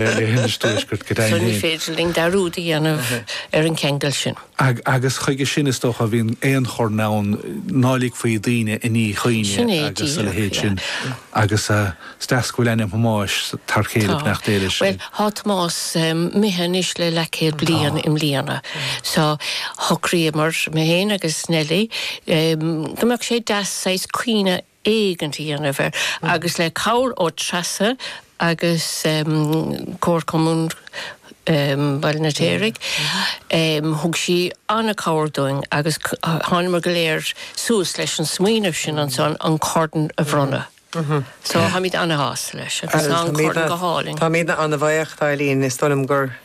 léitheoir an Tuaiscirt go deimhin féin. Ní féidir linn dearúd a dhéanamh ar an cheangal sin. Agus chuige sin, is dócha, a bhíonn aon chorn ann, ná ligfí daoine i ndíchuimhne agus a leithéid sin. Agus is deas go bhfuil ainm Thomáis t'fhear céile, beannacht Dé leis. Tá. Bhuel, tá Tomás imithe anois le leathchéad bliain i mbliana. So, shocraíomar, mé féin agus Nellie, go mbeadh sé deas saghas cuimhne éigint a dhéanamh air agus le cabhair ó Treasa agus Comharchumann Bhaile an Fheirtéaraigh thug sí an-cabhair dúinn agus thánamar go léir suas leis an smaoineamh sin ansan an Corn a bhronnadh. So, táimid ana-shásta leis agus tá an Corn go hálainn. Táimidne ana-bhuíoch d'Eileen, is dóigh liom gur.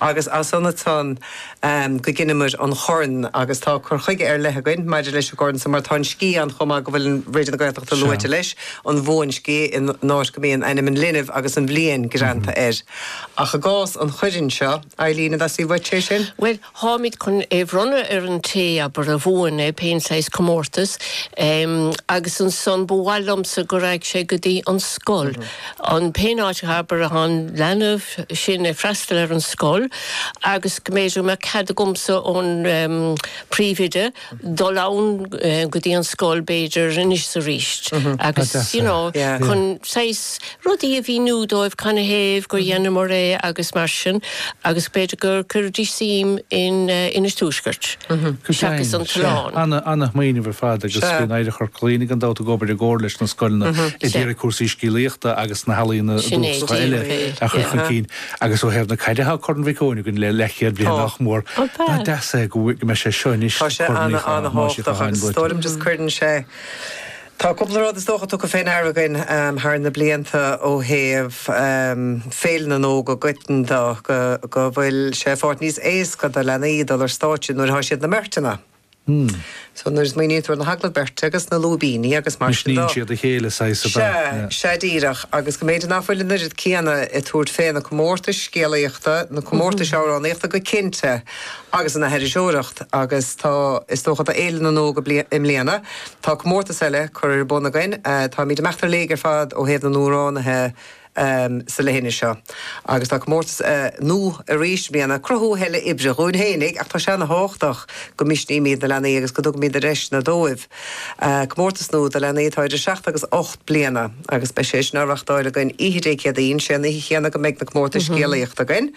agus as san ansan go gceannaíomair an Corn agus tá cur chuige ar leith againn maidir leis an gCorn san mar tá an sciath ann chomh maith go bhfuil an Raidió na Gaeltachta luaite leis, an bhuansciath, in áit go mbíonn ainm an linbh agus an bhliain greanta air. Ach i gcás an Choirn seo, Eilín, theastaigh uait, sé sin? Bhuel, Táimid chun é bhronnadh ar an té abair a bhuann é, pén saghas comórtas, em, agus ansan ba mhaith liomsa go raghadh sé go dtí an scoil, an, pén áit abair athá an leanbh sin ag freastal ar an scoil agus go mb'fhéidir go mbeadh cead agamsa ón, em, príomhoide, dul ann go dtí an scoil b'fhéidir anois is arís agus you know chun saghas rudaí a mhíniú dóibh canathaobh gur dheineamar é agus mar sin agus b'fhéidir go gcuirfidís suim in Inis Tuaisceart seachas an tOileán. Ana, ana-smaoineamh ar fad agus bíonn Oidhreacht Chorca Dhuibhne gan dabht ag obair i gcomhar leis na scoileanna ag iarraidh cúrsaí scéalaíochta agus na healaíona dúchasacha eile a chur chun cinn. Agus ó thaobh na caide thá Corn Mhic Eoin againn le leathchéad bliain nach mór. Nach deas é go mbeidh sé seo anois, Tá sé Corn Thomáis Uí ana-thábhachtach Chatháin agus luaite. Is dóigh liom just cuireann sé, tá cúpla rud is dócha tugtha fén aire againn thar na blianta ó thaobh Féile na nÓg i gcoiteann de, go bhfuil sé i bhfad níos éasca do leanaí dul ar stáitse nuair athá siad ina mbeirteanna. So nuair a smaoinítear ar na hagallaimh beirte agus na lúibíní agus mar sin dó. Misníonn siad a chéile saghas ab ea? Sea, sea díreach agus go mb'fhéidir ná fuil an oiread céanna ag tabhairt fé na comórtais scéalaíochta, na comórtais amhránaíochta go cinnte agus an aithriseoireacht agus tá, is dócha do Fhéile na nÓg i mbliana, tá comórtas eile curtha ar bun againn. Táimid ag imeacht ar léig ar fad ó thaobh na n-amhránaithe, sa leithinis seo agus tá comórtas nua arís i mbliana ag cruthú a thuilleadh oibre dhúinn fhéinig ach tá sé ana thábhachtach go misnímíd na leanaí agus go dtugaimíd na deiseanna dóibh. Comórtas nua do leanaí atá idir seacht agus ocht bliana agus beidh sé sin á reachtáil againn oíche Dé Céadaoin, sé an oíche chéanna go mbeidh na comórtais scéalaíochta againn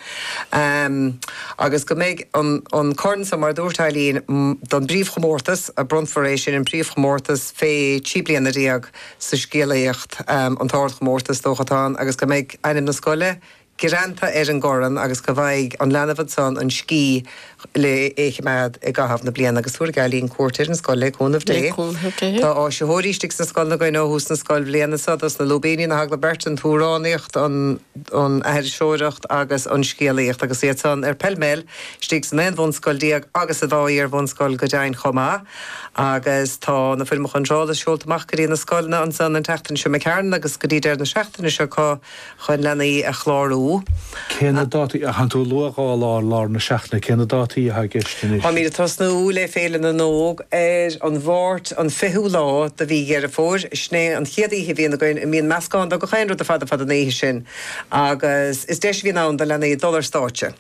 agus go mbeidh an corn san mar a dúirt Eileen, don bpríomh chomórtas a bronnfar é sin an príomh chomórtas fé trí bliana déag. sa scéalaíocht, an t-ardchomórtas, is dócha, atá ann agus go mbeidh ainm na scoile greanta ar an gcorn agus go bhfaighidh an leanbh ansan an sciath le chimeád i gcaitheamh na bliana. Agus tabharfaidh Eileen cuairt ar an scoil le cúnamh Dé. Tá áisitheoirí istigh sna scoileanna againn ó thús na scoilbhliana so, dos na lúibíní, na hagallaimh beirte, an t-amhránaíocht, an aithriseoireacht agus an scéalaíocht agus iad san ar bheil mheil istigh san aon bhunscoil déag agus sa dá iar-bhunscoil go deimhin chomh maith. agus tá na Foirmeacha Iontrála seolta amach go dtí na scoileanna ansan an tseachtain seo, a Mhic Cearáin agus go dtí deireadh na seachtaine seo acu chun leanaí a chlárú. Cé na dátaí? Ach an tú a luaigh dhá lá ar lár na seachtaine, cé na dátaí atá i gceist anois? Táimid ag tosnú le Féile na nÓg ar an Mháirt an 20ú lá de mhí Deireadh Fómhair, sin é an chéad oíche a bhíonn againn a mbíonn meascán de gach aon rud ar fad ar fad an oíche sin agus is deis a bhíonn ann do leanaí dul ar stáitse,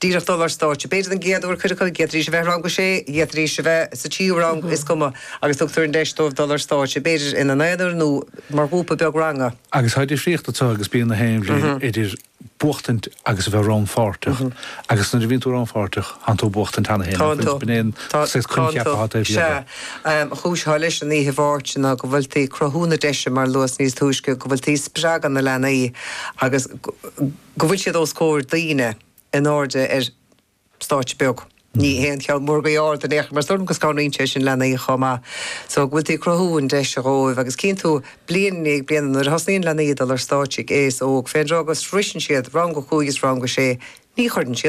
díreach dul ar stáitse. B'fhéidir an gcéad uair do chuid acu, d'fhéadfaidís a bheith i rang 6, d'fhéadfaidís a bheith sa tríú rang, is cuma, agus tugtar an deis dóibh dul ar stáitse, b'fhéidir ina n-aonar nó mar ghrúpa beag ranga. Agus tá difríocht anseo agus bíonn na haon bhliain idir buachtaint agus a bheith rannpháirteach, agus nuair a bhíonn tú rannpháirteach, thánn tú ag buachtaint cheana féin, Thánn tú. b'in an coincheap atá taobh thiar de. Sea. An chúis atá leis an oíche Mháirt ná go bhfuil tú ag cruthú na deise, mar luas níos túisce, go bhfuil tú ag spreagadh na leanaí agus go, go bhfuil siad os comhair daoine in airde ar stáitse beag, ní haon cheann mór go ard in aon chor mar is dóigh liom go scanraíonn sé sin leanaí chomh maith so go bhfuil tú ag cruthú an deis dhóibh agus cíonn tú bliain i ndiaidh bliana nuair a thosnaíonn leanaí ag dul ar stáitse ag aois óg fén dtráth go sroiseann siad rang a cúig is rang a sé ní chuireann siad